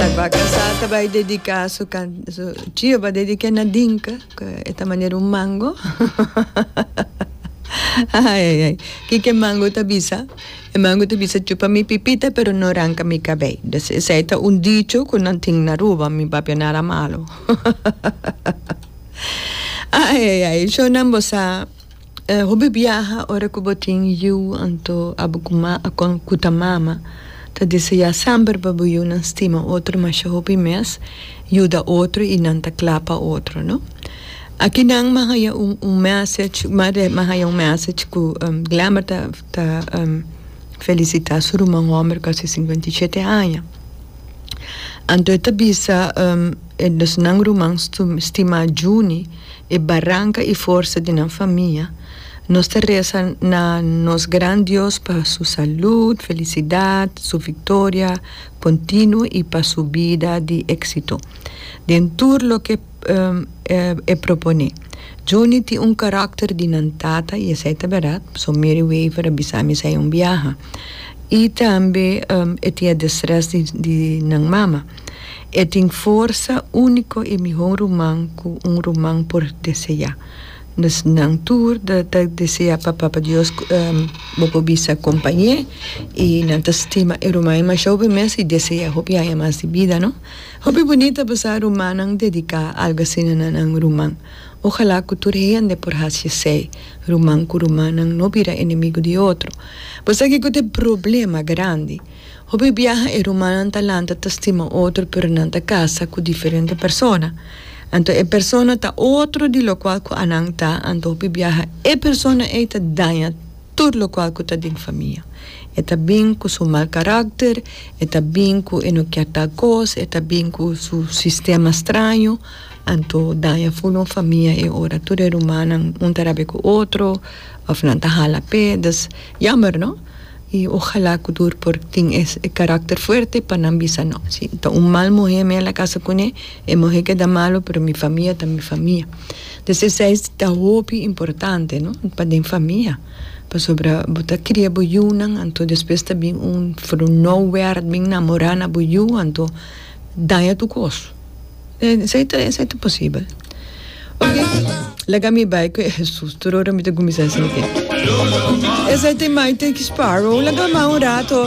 Ta ba casá ta bai dedicá su su trio ba dediqué na dinka cu e ta manera un mango ai ai ai kiko e mango ta bisa e mango ta bisa chupa mi pipita pero no ranca mi cabei dus esei ta un dicho cu nan tin na Aruba mi papia no era malo ai ai ai shownan bo sa. Hopi biaha ora cu bo tin yiu anto a bo cuma acon cu ta mama ta deseá semper pa bo yiunan stima otro masha hopi mes, yuda otro y nan ta cla pa otro no. Aki nan mi a haya un un message mi a mi a haya un message cu Glamber ta ta felicita su ruman homber cu a haci cincuenta y shete aña anto e ta bisa e nos nan ruman stima Junie. e baranka i forsa di nan famia, nos ta resa na nos gran Dios pa su salud, felisidat, su viktoria kontinuo i pa su bida di éksito den tur loke e proponé. Junie tin un karakter di nan tata i esei ta bèrdat, pasobra Mary Wever a bisa mi esei un biaha. I tambe e tin e destrès di nan mama. E tin forsa úniko i mihó ruman ku un ruman por deseá. Nos nan tur ta deseá pa Papa Dios bo por bisa kompañ'é i nan ta stima e rumannan masha hopi mes i deseá hopi aña mas di bida, no? Hopi boni ta pasá rumannan dediká algu asina na nan ruman. Ojalá ku tur hende por hasi esei, ruman ku rumannan no bira enemigu di otro. Por esaki ku ta e problema grandi. Hopi biaha e rumannan ta lanta testimo otro pero nan ta casa cu diferente persona. Anto e persona ta otro di locual cu anan ta, anto hopi biaha e persona ey ta daña tur locual cu ta den famia. E ta bin cu su mal caracter, e ta bin cu e no kier tal cos, e ta bin cu su sistema straño, anto daña full un famia e ora tur e rumannan un ta rabia cu otro of nan ta hala pe, dus jammer no. Y ojalá cu tur por tin e caracter fuerte pa nan bisa no. Si ta un mal muhe mi a la casa cune, e muhe keda malo pero mi famia ta mi famia. Des esey ta hopi importante no pa den famia. Pasobra bo ta cria bo yunan anto despues ta bin un vrouwerd bin namora na bo yu anto daña tu cos. Esei ta esei ta posibel. Ok, laga mi bai ku e Hesus tur ora mi ta kuminsá sintí. Esei ta imagen den ki sparrow, laga man un rato,